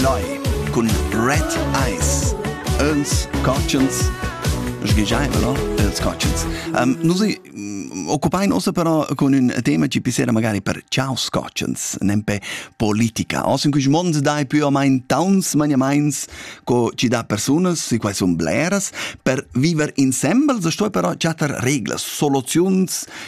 Leu cun Red Ice. Els cotschens sghigiaivel els cotschens. Um, nus occupain ossa però con un tema che pissera magari per ciao scotchens, nempe politica. Os in cui mons dai più o main towns maniamains co ci da personas, si quai sun bleras, per viver insembel, so stoi però chattar reglas, soluziuns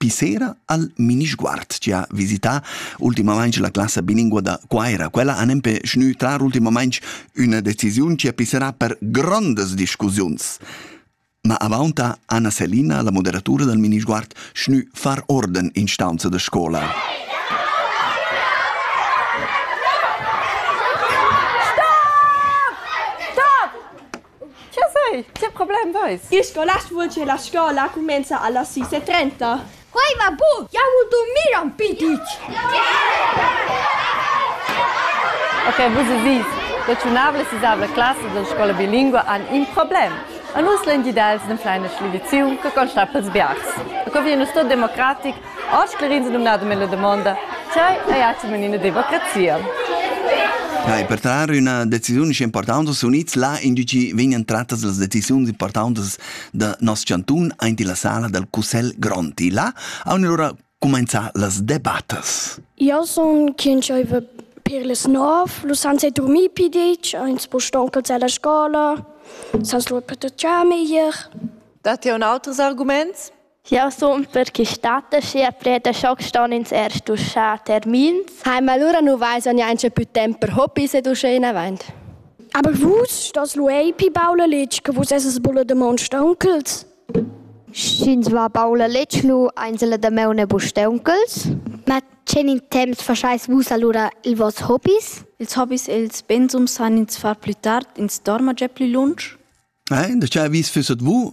Pissera al Minisguard chi ha visità ultimamaing la classa bilingua da Cuaira. Quella ha nempe schnü trar ultimamaing üna decisiun chi pisserà per grondas discussiuns. Ma avaunt ha Anna Selina, la moderatura dal Minisguard, schnü far uorden in staunza da scola. Che fai? Che problem vais? Il scolast vul che la scola cumenza alla 6.30. Quei va bu! Ja vul dormir am pititsch! Ok, vus avis, ragiunable si avla classa da scola bilingua han in problem. A nus l'en dals den fleina schliviziun che consta pels biars. E co vien sto democratic O sclerins ha numnado me la damonda, tgei ei atgemen ina democrazia? Dai, per trar üna decisiun is importantas unids là in gi vegnan trattas las decisiuns importantas da nos chantun aint illa sala dal Cussel Gronti. Là haun lura cumenzà las debattas. Io sun chi entschaiva per les nov, lu sans ei dormir pi ditg, eins po stoncals alla scola, sans lur poter ciar meglier. Dat ihr un alters Arguments? Jau sun per quist'ata schi apreta sco che ston ins erst uschè termins. Hai, ma allura nu vaisa niaincha più temp per hobbies ed uschè inavant. Aber vus, das luei pi baula letg che vus esses bulla da mon stauncels? Sch'ins va baula letg lu einsele da meune bu steuncels. Ma c'en in temps faschais vus allura il vos hobbies? Ils hobbies e ils pensums san ins far pli tard, ins dorma già pli lunsch. Eh, da c'è vis füssat vu?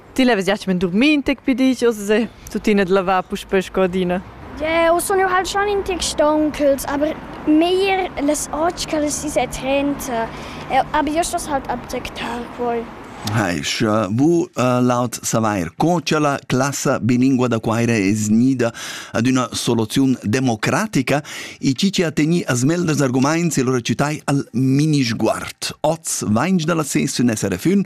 Ti leves ja men durmir in tec pli ditg o se tuttina de lavar puspè sco adina. Yeah, eu sun eu hal schon in tec stoncels, aber meglier las otg che las is e trenta. Aber io sto halt abdectar poi. Hai, sche vu uh, laut savair co che la classa bilingua da Quaire è sgnida ad una soluzione democratica e chi ci ha teni a smelders arguments e lo recitai al mini sguard. Oz vainge da la sens un SRF1